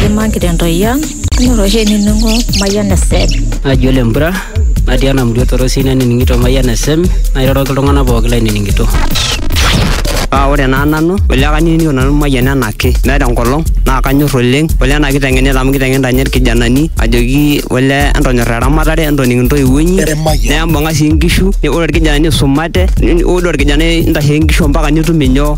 Kaimaki tentoki ang, ore oshi enining'o Mayian FM. Naji ole Mpura, natii ena murua torosi nanining'ito Mayian FM, nairoroki iltung'anak pooki lainining'ito. Paa ore naa nanu, ole kanining'ito nanu Mayian enaake, meeta enkolong naa kanyor oleng, ole ena kiteng'enita amu kiteng'enita ninye irkijanani ajoki ole entonyorra eramatare, entoning intoiwuo inyi, nembung'a sii nkishu, ore irkijanani isumate, ore orkijanai intashe nkishu ompaka nitum inyoo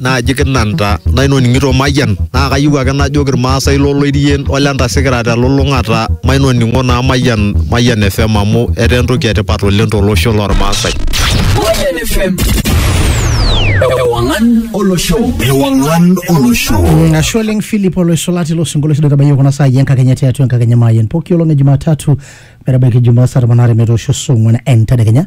naaji kinanta nainoning'ito mayian naa kayieu ake najoki irmaasai loloirien ole ntasikira telulung'ata mainoning'o naa mayian mayian fm amu etaa entoki etipat oleng tolosho lormaasai Mayian FM. Ewangan olosho. Ewangan olosho. Ashe oleng Philip oloisulati lo sinkolio sidai tabayie kuna saai enkakenya tiatua enkakenya maayen pooki olong e Jumatatu metabaiki Jumaa saa tomon aare metoosho saa ong'wan entedekenya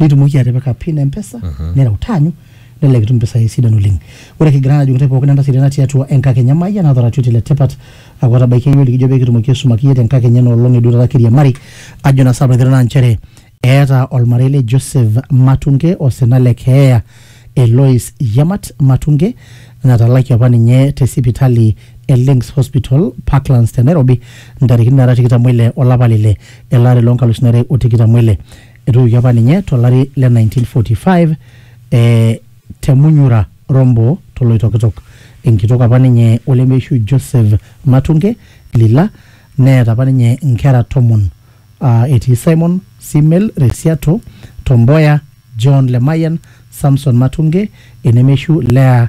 nitumoki atipika pin empesa uh -huh. nireu taanyu nelelek itum mpisai sidan oleng ore kigira najo ntae pookin entasati natii atua enkakenya mayian naata oratioti le tipat aku atabaikia yiok likijo peekitumoki aisumaki iyie tenkakenya ena olong edu taata kiriamari ajo na saapa naa nchere eeta olmarei le Joseph Matunge osina le keeya Elois Yamat Matunge natalaki apa ninye te sipitali e Links Hospital Parklands te Nairobi ntarikini naara tikitam ile olapa lile ele ari loo nkalusuni are o tikitam ile Etoiwuoki apa ninye to lari le 1945 e te Munyura, Rombo to Loitokitok. Enkitok apa ninye o lemeishu Joseph Matunge Lila neeta apa ninye nkera tomon aa etii Simon, Simel, Resiato, Tomboya, John Lemayian, Samson Matunge, enemeishu Leah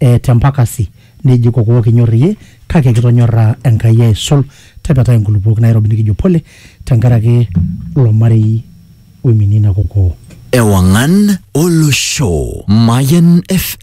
e te mpakasi nejiko kuo kinyor iyie kake kitonyorra Enkai aisul tepetai nkulupuok nairobi nikijo pole tenkaraki lo marei oiminie ina kokoo. Ewang'an Olosho, Mayan FM.